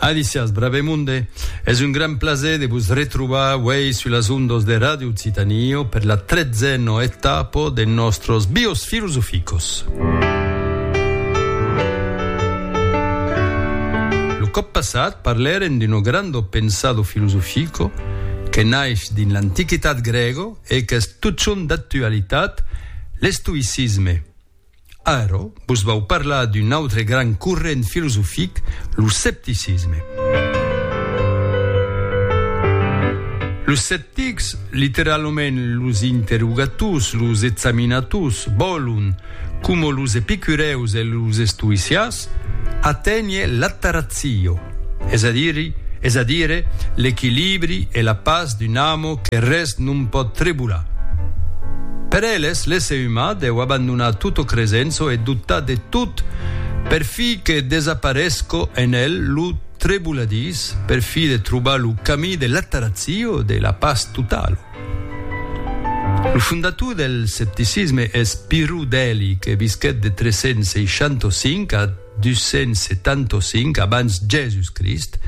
Alicias Bravemunde, es un gran plaser de vos retrobar uèi sus las ondas de Radio Occitània per la tretzena etapa de nòstros Bios Filosoficos. Lo còp passat parlèrem d'un grande pensado filosofico que naix dins l'antiquitat grèga e qu'es totjorn d'actualitat, l'estoïcisme. Ara, vos vau parlar d'un autre grand corrent filosofic, lo scepticisme. Los sceptics, literalament los interrogators, los examinators, vòlon, coma los epicurèus e los estoïcias, Sus. Aténher l'attaratzio, es a diri, es a dire, l'equilibri e la pas d'un amo que res non pòt trebolar. Per eles, l'èsser umà deu abandonar tot o cresenço e dotar de tot per fi que desaparesco en el lo treboladís, per fi de trobar lo camí de l'attaratzio, de la pas totalo. Lo fondator del scepticisme es Pirro Deli que visquèt de 365 a 275 abans Jèsus Crist.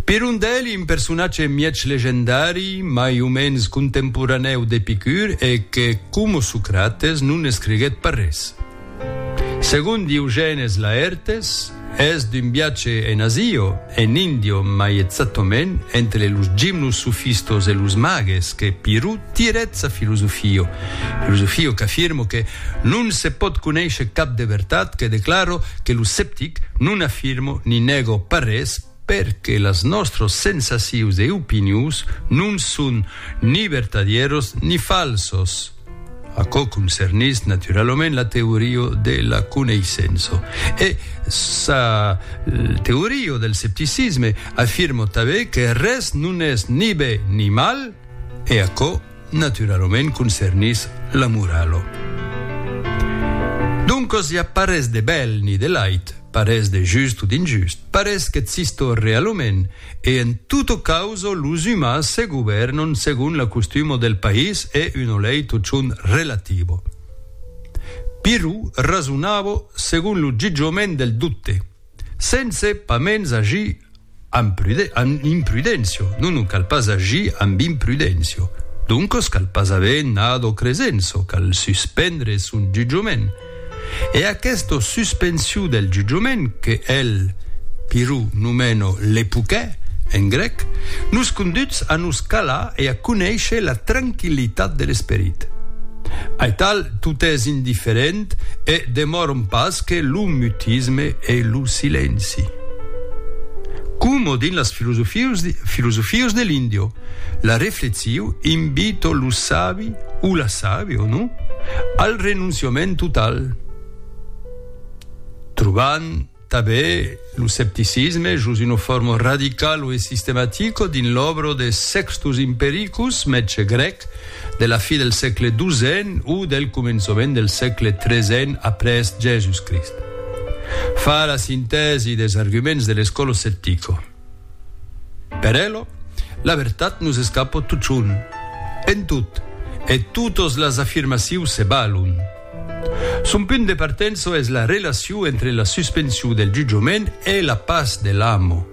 Piron Deli, un personatge mièg legendari, mai o mens contemporanèu d'Epicur e que, coma Socrates, non escriguèt pas res. Segon Diogènes Laertes, Es d'un viatge en Asia, en Índia mai exactament, entre los gimnosofistas e los mages que Pirrot tirèt sa filosofia, filosofia qu'afirma que non se pòt conéisher cap de vertat, que declara que lo sceptic non afirma ni nèga pas res, perque las nòstros sensacius e opinius non son ni vertadieros ni falsos, aquò concernís naturalament la teoria de la coneissença, e sa teoria del scepticisme afirma tanben que res non es ni ben ni mal, e aquò Naturalament concernís la moralo. Doncos i a pas res de bèl ni de lait, pas res de just o d'injust, pas res qu'existo realament, e en toto causo los umans se govèrnon segon la costumo del país e uno lei totjorn relativo. Pirro rasonavo segon lo jutjament del dote. Sense pas mens agir amb imprudéncia, non, non cal pas agir amb imprudéncia, doncos cal pas aver nado cresenço, cal suspendre son jutjament. E aquesta suspension del jutjament, que el Pirro nomena l'epouquer, en grec, nos conduch a nos calar e a conéisher la tranquillitat de l'esperit. Aital, tot es indifferent, L'ensenyament e demòron pas que lo mutisme e lo silenci. Como dins las filosofios de l'Indio, la reflexiu invito lo sabi o la sabi, o no, al renonciament total, trobant, Tabé, lo scepticisme, jos una forma radicalo e sistematico dins l'òbra de Sextus Impericus, mètge grèc, de la fi del sègle xii o del començament del sègle xiii après Jèsus-Crist. Fa la sintèsi des arguments de l'escòla sceptico. Per elo, la vertat nos escapo totjorn, en tot, e totos las afirmacius se balon. Son punt de partenço es la relaciu entre la suspensiu del jutjament e la pas de l'amo.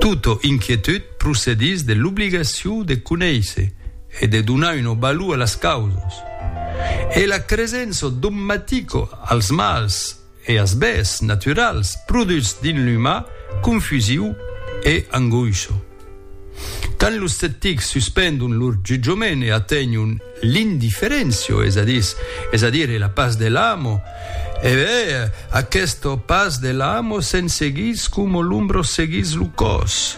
Tota inquietud procedís de l'obligaciu de conéisser e de donar una valor a las causas, e la cresença dogmatico als mals, E as bèths naturals produchs dins l'umà confusiu e angoisho. Quand los sceptics suspendon lor jutjament e atenhon l'indiferentio, es a dis, es a dire la pas de l'amo, e bèth aquesta pas de l'amo se'n seguís coma l'ombra seguís lo còs.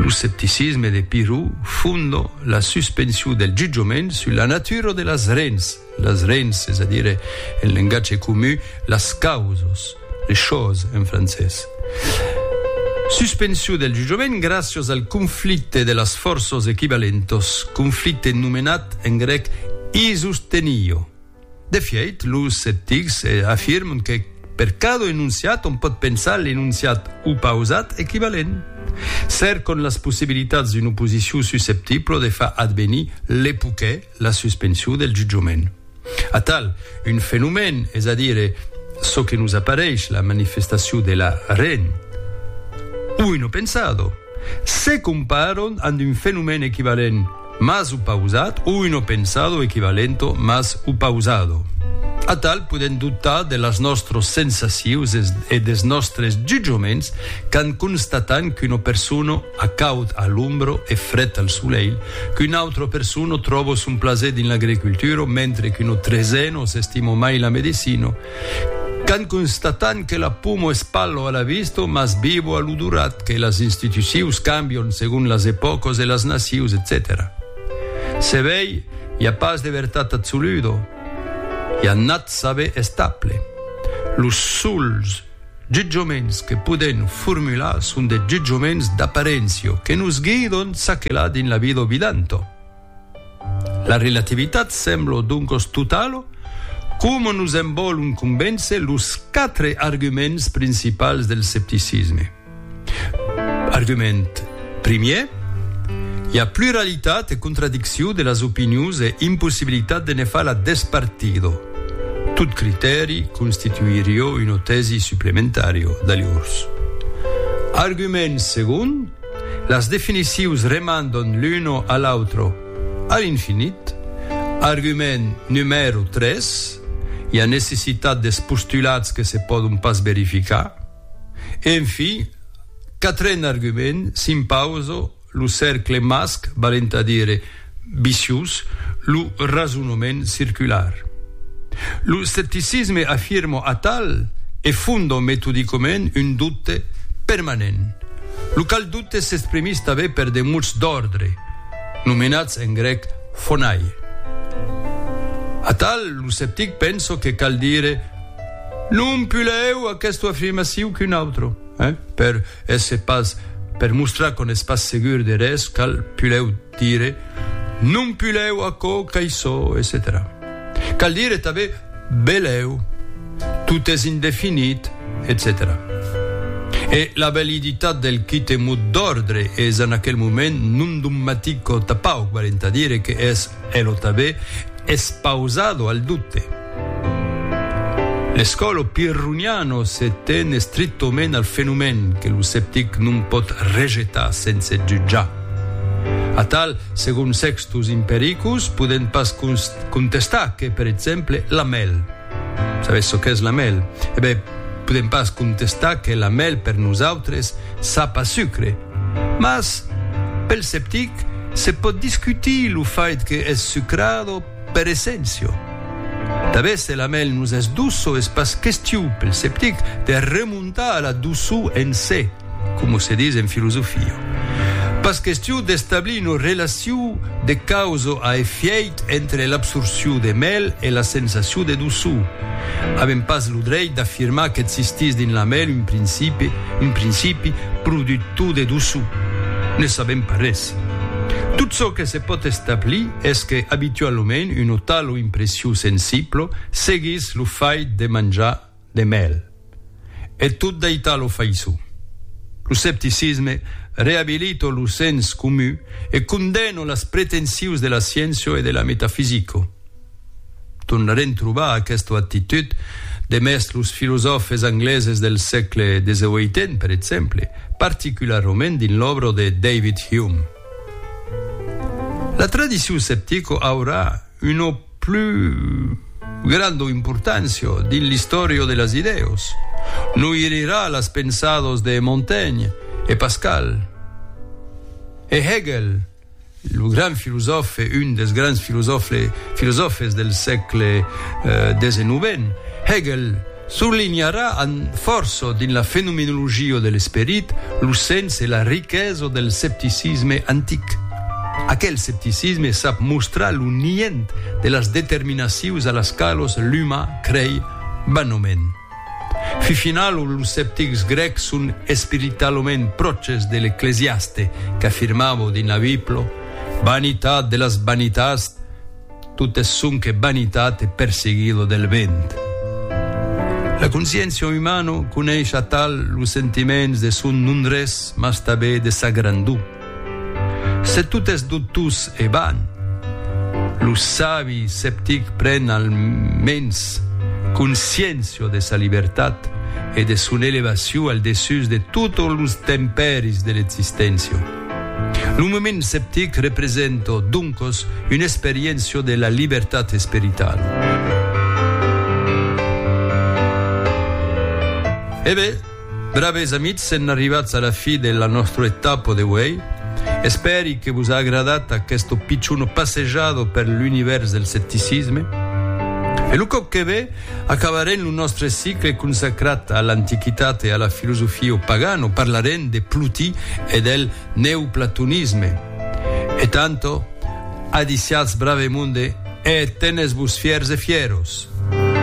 Lo scepticisme de Pirro fonda la suspensiu del jutjament sus la natura de las rens. Las rens, es a dire, en lengatge comu, las causos, les choses en francés. Suspensiu del jutjament gràcios al conflicte de las fòrços equivalentos, conflicte nomenat en grèc isostenio. De fièit, los sceptics afirman que per cada enonciat on pòt pensar l'enonciat opausat equivalent. Cercan las possibilitats d'una oposicion susceptibla de far advenir l'epoquè, la suspension del jutjament. Atal, un fenomèn, es a dire, çò que nos apareish la manifestacion de la ren, o un opensado, se comparon amb un fenomèn equivalent mas opausat o un opensado equivalento mas opausado. Atal, podèm dubtar de las nòstros sensacions e des nòstres jutjaments quand constatam qu'una persona A caud a l'ombro e fret al solelh, qu'un autre persona tròbo son plaser dins l'agricultura mentre que no treseno s'estimo mai la medecina, qu'an constatant que la poma es pallo a la vista mas vivo a l'odorat, que las institucius cambion segon las epòcas e las nacius, etcetèra. Se vei, i a pas de vertat absoluda, i a nat saber estable. Los sols. Jutjaments que podèm formular son de jutjaments d'aparéncia que nos guidon çaquelà dins la vida vidanta. La relativitat sembla doncas totala coma nos en vòlon convéncer los quatre arguments principals del scepticisme. Argument primièr, i a pluralitat e contradiccion de las opinions e impossibilitat de ne far la despartido. Tot critèri constituirió una tèsi suplementària d'alhors. Argument segon, las definicions remandan l'una a l'autra a l'infinit. Argument numèro tres, i a necessitat des postulats que se pòdon pas verificar. Enfin, quatren argument, s'impausa lo cercle masc, valent a dire viciós, lo rasonoment circular. Lo scepticisme afirma atal e fonda metodicament un doute permanent, lo qual doute s'exprimís tanben per de mots d'òrdre, nomenats en grèc phonai. Atal, lo sceptic pensa que cal dire, Non pulèu aquèsto afirmaciu qu'un autre, eh? Per èsser pas, per mostrar qu'on es pas segur de res, cal pulèu dire, Non pulèu aquò qu'aissò, etcetèra. Cal dire tanben, Belèu, tot es indefinit, etcetèra. E la validitat del quite mot d'òrdre es en aquel moment non dogmatic o tapauc, valent a dire que es, E lo tabè es pausado al dubte. L'escòlo pirroniano se ten estrictoment al fenomèn que lo sceptic non pòt rejetar sense jutjar. Atal, segon Sextus Impericus, podèm pas contestar que, per exemple, la mèl. Sabètz çò qu'es la mèl? E ben, podèm pas contestar que la mèl per nosautres sap a sucre. Mas, pel sceptic, se pòt discutir lo fait que es sucrado per essencio. Tanben se la mèl nos es doço es pas questiu, pel sceptic, de remontar a la doçor en se. coma se dis en filosofia, pas question d'establir una relacion de causa a efièit entre l'absorcion de mèl e la sensacion de doçor. Avèm pas lo dreit d'afirmar qu'existís dins la mèl un principi, un principi productor de doçor. Ne sabèm pas res. Tot çò que se pòt establir es que, abitualament, una tala impression sensibla seguís lo fait de manjar, de mèl, e tot d'aital lo faisò. Lo scepticisme reabilito lo sens comu e condeno las pretensius de la scienço e de la metafisico. Tornarem trobar aquesta actitud demest los filosòfes angleses del sègle xviii, per exemple, particularrament dins l'òbra de David Hume. La tradicion sceptico aurà una. plus granda importància dins l'istòria de las idèas, noirira las pensadas de Montaigne e Pascal e Hegel, lo grand filosòfe, un dels grands filosòfes del sègle xix. Hegel. Surlinharà amb fòrça dins la fenomenologia de l'esperit lo sens e la riquesa del scepticisme antic. Aquel scepticisme sap mostrar lo nient de las determinacius a las qualos l'umà crei vanament. Fifinalo, los sceptics grècs son espiritalament pròches de l'ecclesiaste, qu'afirmava dins la Bibla, Vanitat de las vanitats, Totes sonque vanitat e perseguilo del vent. La consciéncia umano coneis atal los sentiments de son non-res mas tabé de sa grandor. Se tot es dotós e van, lo sabi sceptic pren al mens consciéncia de sa libertat e de son elevacion al dessús de totos los tempèris de l'existéncia. Lo moment sceptic representa, doncas, una experiéncia de la libertat esperitala. E ben, braves amics, sèn arribats a la fi de la nòstra etapa d'auei. Espèri que vos a agradat aquesta pichona passejada per l'univèrs del scepticisme. E lo còp que ve, Acabarem lo nòstre cicle consacrat a l'antiquitat e a la filosofia o pagan o parlarem de Plotí e del neoplatonisme. E tanto, adiciatz brave monde e tenes-vos fièrs e fieros!